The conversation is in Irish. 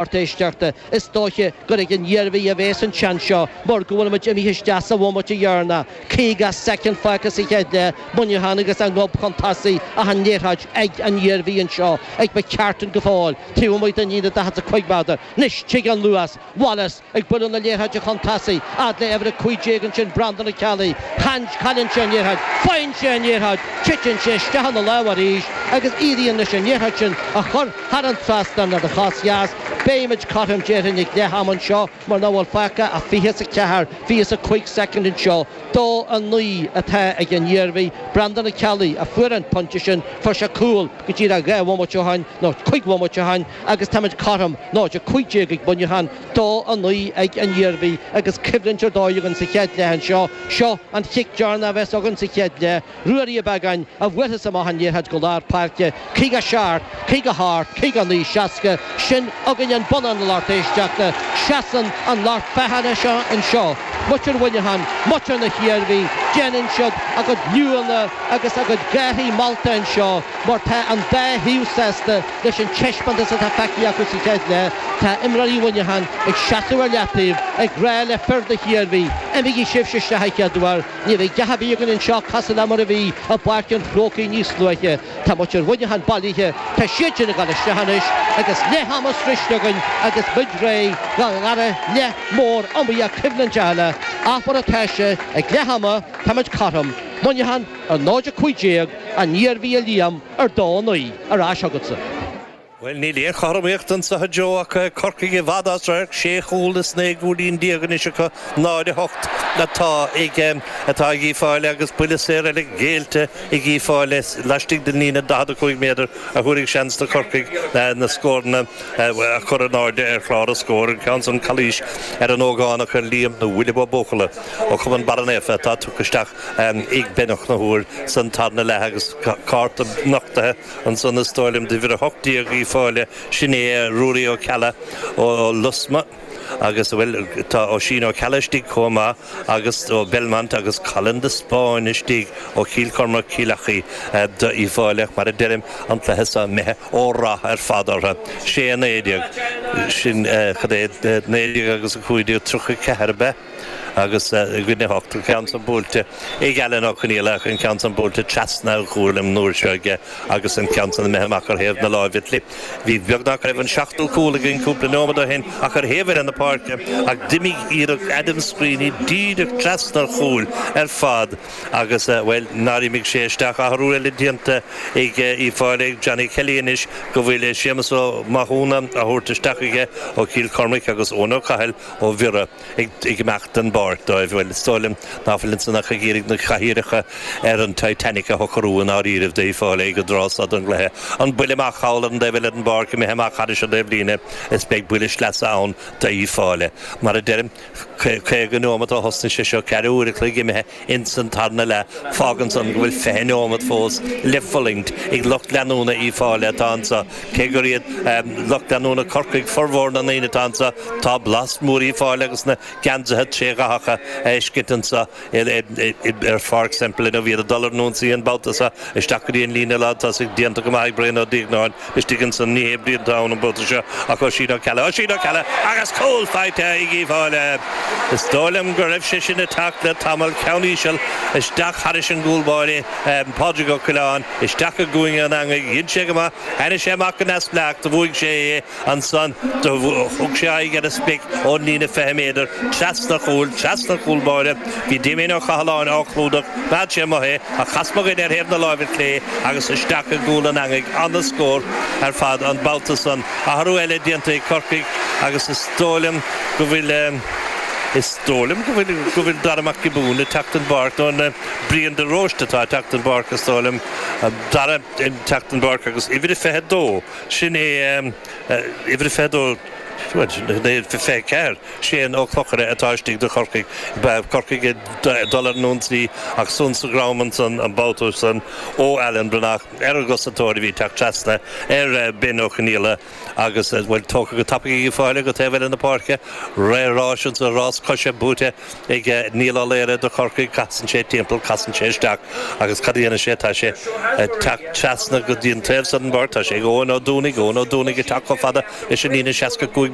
lucht éisteachta. Is dóiche gur ag an Iarmhí a bhéas an seans seo mar go bhfuilimid imithe isteach sa bhomaite dheireanach. Caoga soicind fágtha sa chéad leath, Muineachán agus a ngob chun tosaigh ach an liathróid ag an Iarmhí anseo ag McCartan go fóill, taobh amuigh den líne 45 méadar. Anois tig an luas. Wallace ag bualadh na liathróide chun tosaigh, fhad le uimhir 15 ansin, Breandán Ó Ceallaigh. Cailleann sé an liathróid. Faigheann sé an liathróid. Titeann sé isteach ina lámh arís agus éiríonn leis an liathróid sin a chur. Thar an trasnán ar an chos dheas, beimid cothrom déarfainn ag leath ama anseo mar nach bhfuil fágtha ach fiche is a ceathair, fiche is a cúig soicind anseo. Dó a naoi atá ag an Iarmhí, Breandán Ó Ceallaigh, a fuair an pointe sin, fuair sé cúl go díreach dhá bhomaite ó shin, nó cúig bhomaite ó shin, agus táimid cothrom, 0-15 ag Muineachán, dó a naoi ag an Iarmhí agus coimhlint ar dóigh againn sa chéad leath anseo. Seo an chic deireanach a bheas againn sa chéad leath. Ruairí Ó Beagáin a bhuaileas amach an liathróid go lár páirce, 57, 58, 59, 60, sin againn an bonnán, a lucht éisteachta, seasann an lucht féachana seo anseo, muintir Mhuineacháin, muintir na hIarmhí, déanann siad a gcuid liúnna agus a gcuid gárthaí molta anseo mar tá an dá thaobh sásta leis an taispeántas atá feicthe acu sa chéad leath, tá imreoirí Mhuineacháin ag seasamh ar leataobh ag rá le fir na hIarmhí, imígí sibhse isteach a chéaduair. Ní bheidh a dhath ar bith againn anseo cosúil le mar a bhí i bPáirc an Chrócaigh níos luaithe. Tá muintir Mhuineacháin bailithe, tá siad sin ag dul isteach anois agus leath ama sroichte againn agus muid réidh do dhara leath mór iomaíoch coimhlinteach eile, ach mar atá sé ag leath ama tá muid cothrom, Muineachán ar 0-15 an Iarmhí a Liam, ar dó a naoi ar ais agatsa. Bhuel, níl aon chothromaíocht anseo, a Joe, ach Corcaigh i bhfad as radharc, sé chúl is naoi gcúilín déag anois acu, 0-8 atá ag, atá ag Uíbh Fhailí agus buille saor eile géillte ag Uíbh Fhailí laistigh den líne 45 méadar a thabharfaidh seans do Chorcaigh na scóranna a chur in airde ar chlár an scóir, an ceann san calaois ar an ógánach Liam nó William Ó Buachalla ó chumann Barra Naofa atá tugtha isteach ag Ben Ó Conchúir san tarna leath agus cárta nochtaithe Ansan is dóigh liom d'uimhir 18 Uíbh Fhailí, sin é Ruairí Ó Ceallaigh ó Lusmá agus, bhuel, tá Oisín Ó Ceallaigh istigh chomh maith agus ó Belmont agus Colin de Spáinn istigh ó Chill Chormaic, Cill Achaidh d'Uíbh Fhailí, mar a deirim, an cluiche seo imithe ó rath ar fad orthu. Sé a naoi déag, sin, cad é, naoi déag agus a cúig déag, tríocha ceathair ab ea? agus i gcoinne a hocht, an ceann san buailte ag Alan Ó Coinnialach, an ceann san buailte trasna an chúil an uair seo aige agus an ceann san imithe amach ar thaobh na láimhe clé. Bhí beagnach go raibh an seachtú cúl againn cúpla nóiméad ó shin ach ar thaobh eile na páirce ach d'imigh iarracht Adam Screeney díreach trasna an chúil ar fad agus, bhuel, nár imigh sé isteach? Athrú eile déanta ag Uíbh Fháilí ag Johnny Kelly anois go bhfuil Séamus Ó Mathúna á thabhairt isteach aige ó Chill Chormaic agus Eoin Ó Cathail ó Bhiorra ag imeacht den bpáirc dóibh. Bhuel, is dóigh liom ná fuil ansan ach ag iarraidh na cathaoireacha ar an Titanic a shocrú i ndáiríribh, d'Uíbh Fháilí ag an dtráth so den gcluiche. An buille maith thall ar an dtaobh eile den bpáirc imithe amach thairis an taobhlíne, is beidh buille sleasa ann d'Uíbh Fháilí. Mar a deirim, caoga neomat ó thosnaigh sé seo, ceathrú uaire an chloig imithe, Ins an tarna leath fágann san go bhfuil fiche neomat fós le fulaingt ag lucht leanúna Uíbh Fháilí atá anso. Cé gur iad lucht leanúna Corcaigh formhór na ndaoine atá anso tá blas mór Uíbh Fháilí agus na geansaithe trídhathacha le feiscint anso ar Pháirc Semple inniu. Beidh siad ag dul ar an ionsaí an babhta so isteach go dtí an líne lántosaigh déanta go maith ag Brian Ó Duígeannáin. istigh ansan, ní hé Brian atá ann an babhta seo ach Oisín Ó Ceallaigh, Oisín Ó Ceallaigh agus cúl faighte ag Uíbh Fháilí. Is dóigh liom go raibh sé sin ag teacht le tamall, ceann íseal isteach thairis an gcúl báire, Pádraig Ó Coileáin, isteach i gcúinne an eangaigh, dhein sé go maith, tháinig sé amach go neamhspleách, do bhuaigh sé é, ansan do thug sé aghaidh ar an sprioc ón líne 20 méadar, trasna an chúil, trasna an chúl báire, Bhí Damien Ó Cathaláin á chlúdach, bheadh sé amuigh é, ach chas mo dhuine ar thaobh na láimhe clé agus isteach i gcúl an eangaigh, ana-scór ar fad an babhta san. Athrú eile déanta ag Corcaigh agus is dóigh liom go bhfuil, is dóigh liom go bhfuil, go bhfuil Dara Mac Giobúin ag teacht den bpáirc, nó an Brian de Róiste atá ag teacht den bpáirc is dóigh liom, Dara ag teacht den bpáirc agus uimhir a 22, sin é, uimhir a 22, bhuel, sin é, uimhir a 24. Shane Mac Clochaire atá istigh do Chorcaigh. Beidh Corcaigh ag dul ar an ionsaí ach sonc sa dhrom ansan an babhta so ó Alan Breathnach, ar an gcosantóir a bhí ag teacht trasna ar Bhen Ó Conaola agus, bhuel, tógtha go tapaidh ag Uíbh Fháilí go taobh eile na páirce. Ré ráis ansan, rás coise buaite ag Niall Ó Laoghaire do Chorcaigh. Casann sé timpeall, casann sé isteach agus cad a dhéanann sé? Tá sé ag teacht trasna go dtí an taobh so den bpáirc, tá sé ag Eoin Ó Dúnaigh, Eoin Ó Dúnaigh ag teacht chomh fada leis an líne 65.